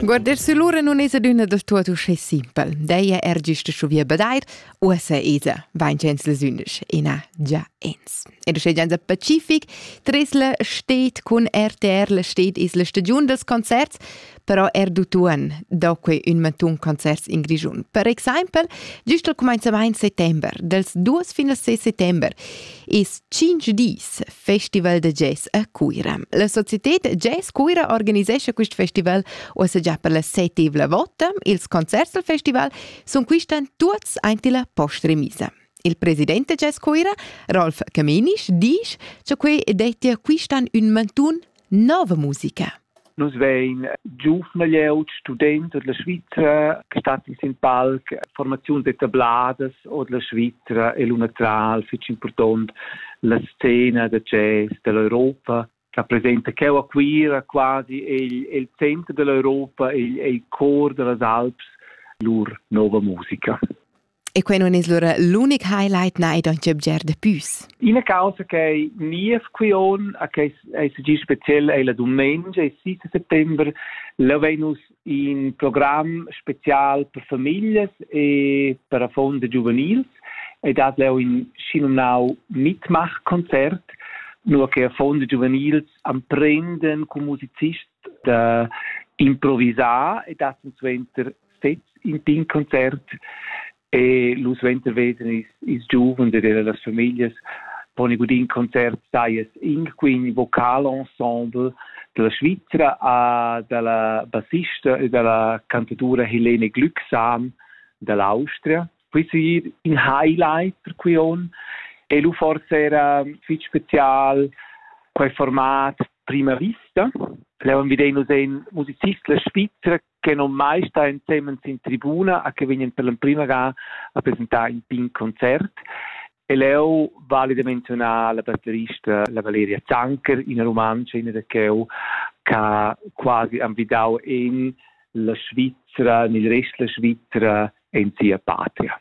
Guarder si lura non es adüna da tuot uschè simpel. Deia er gist scho via bedair, uossa esa vainchens les undisch, ena già ens. Ed uschè gianza Pacific, tresla steht cun RTR, la steht es la stagiun dels concerts, però er d'utuon do quei ün mantun concerts in Grischun. Per exaimpel, giust al cumenzamaint settember, dels 2 fin al 6 settember, es 5 dis Festival da jazz a Cuira. La societad Jazz Cuira organisescha quest festival ussa già per la settivla vota. Ils concerts del festival sun quistan tuots aint illa post-remisa. Il president da Jazz Cuira, Rolf Camenisch, disch cha quei dettia quistan ün mantun nova musica. Nus vein giuvna glieud, student od la Svizra che stat in sin palc, formaziuns etabladas od la Svizra e l'una tra il fitg important la scena da jazz dell'Europa rappresenta cheu a Cuira quasi il, il center dell'Europa, il, il cor dellas Alps, lur nova musica. E quei non es lura l'unic highlight nei don Jebger de Püs. Ina causa che niev quion a che ei segi speziell ei la dumengia il 6 settembre lavein nus in program spezial per familias e per affons de giuvenils e dat leu in schinumnau Mitmachkonzert nur che affons de giuvenils amprenden cum musicist da improvisar e dat suenter sezs in pin concert e lu suenter veden ils, ils giuvens ed las famiglias pon i gudin concert saies in quin vocal ensemble dalla Svizra a dalla bassista e dalla cantatura Helene Glücksam dall'Austria. Questo ir in highlight per qui on e lu forse era fitg special quei format prima vista. Levan videi nus ein musicist la Svizra che non mai sta ensemen in tribuna a che vegnan per l'emprima ga a presentar in pin concert e leu vale da menzionar la batterista la Valeria Zanker, ina rumantscha, ina da cheu, che quasi anvidau en la Svizzera, nel rest la Svizzera, en sia patria.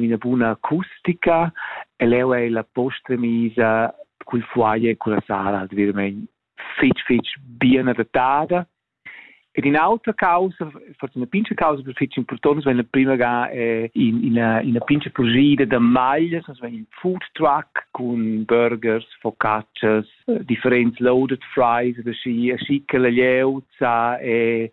ina buna acustica e leu ei la posta misa cul foyer e culla sala veramein fitg fitg bien adattada Ed in autra causa, forse una pinca causa per fitch importante, wenn la prima ga eh, in, ina, ina pinca purgida da maglias, also wenn ein food truck con burgers, focaccias, eh, differents loaded fries, da schi, schi che la lieuza e